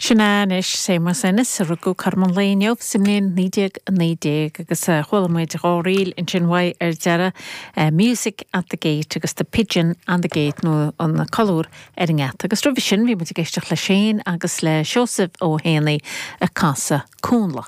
Sin é anois Séamus Ennis, a rugadh cothrom an lae inniu sa mbliain 1919 agus chuala muid dhá ríl ansin uaidh ar deireadh, Music at the Gate agus The Pigeon on the Gate nó An Colúr ar an nGeata. Agus roimhe sin bhí muid ag éisteacht leis féin agus le Seosamh Ó hÉanaí ag casadh Cúnla.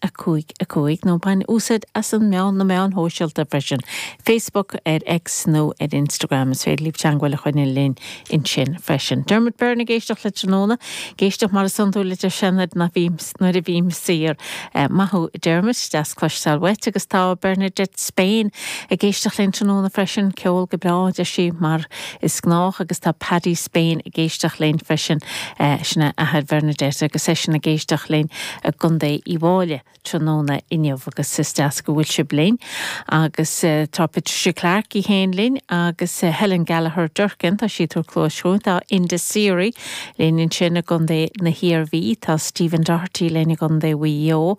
5, 5, nó bain úsáid as na meán, na meáin shóisialta freisin, Facebook, ar X nó ar Instagram. Is féidir libh teagmháil a choinneáil linn ansin freisin. Dermot Byrne ag éisteacht le tráthnóna, ag éisteacht mar is iondúil deir sé nuair a bhím, nuair a bhím saor. Maith thú Dermot, deas cloisteáil uait. Agus tá Bernadette Spain ag éisteacht linn tráthnóna freisin, ceol go breá, deir sí, mar. Is gnách agus tá Paddy Spain ag éisteacht linn freisin, sin é athair Bernadette, agus seisean ag éisteacht linn i gContae Uíbh Fhailí tráthnóna inniu agus is deas go bhfuil sibh linn. Agus tá Patricia Clarke í féin linn agus Helen Gallagher Durkan, tá siad ag tabhairt cluais dhúinn, tá Enda Seery Linn ansin i gContae na hIarmhí tá Stephen Doherty, linn i gContae Mhaigh Eo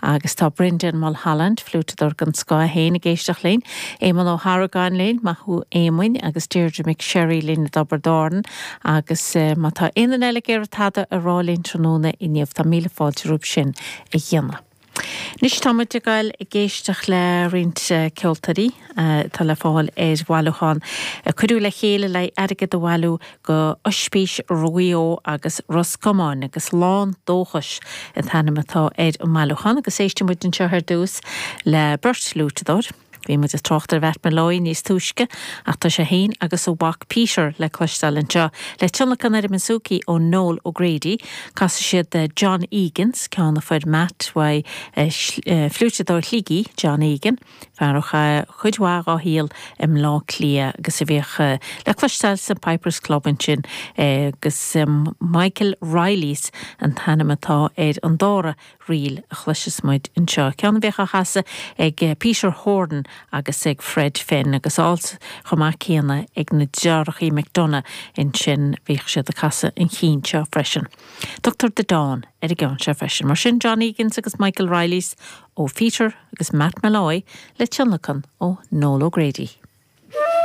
agus tá Brendan Mulholland, fliúiteadóir den scoth, é féin ag éisteacht linn. Éamonn Ó hArgáin, linn, maith thú Éamoinn, agus Deirdre McSherry, linn i dTobar Dorn agus má tá aon duine eile ag iarraidh tada a rá linn tráthnóna inniu tá míle fáilte romhaibh sin a dhéanamh. Anois tá muid ag goil ag éisteacht le roinnt ceoltóirí atá le fáil ar bhailiúchán a cuireadh le chéile le haghaidh airgead a bhailiú do Ospís Mhaigh Eo agus Ros Comáin agus Lán Dóchais an t-ainm atá ar an mbailiúchán agus éistfidh muid anseo ar dtús le beirt fhliúiteadóir. Bhí muid ag trácht ar Mhatt Molloy níos túisce ach tá sé féin agus a mhac Peter le cloisteáil anseo. Le tionlacan ar an bouzouki ó Noel O'Grady, casfaidh siad John Egan's, ceann a fuair Matt ón fliúiteadóir Shligigh, John Egan, fear a chaith cuid mhaith dá shaol i mBleá Cliath agus a bhíodh le cloisteáil sa Pipers Club ansin, agus Michael Reilly's an t-ainm atá ar an dara. Ríl a chloiseas muid anseo. Ceann a bhíodh á chasadh ag Peter Horan agus ag Fred Finn agus ar ndóigh chomh maith céanna ag na deartháireacha McDonagh ansin, bhíodh siad ag casadh an chinn seo freisin. Tugtar The Dawn ar an gceann seo freisin. Mar sin John Egan's agus Michael Reilly's ó Pheter agus Matt Molloy le tionlacan ó Noel O'Grady.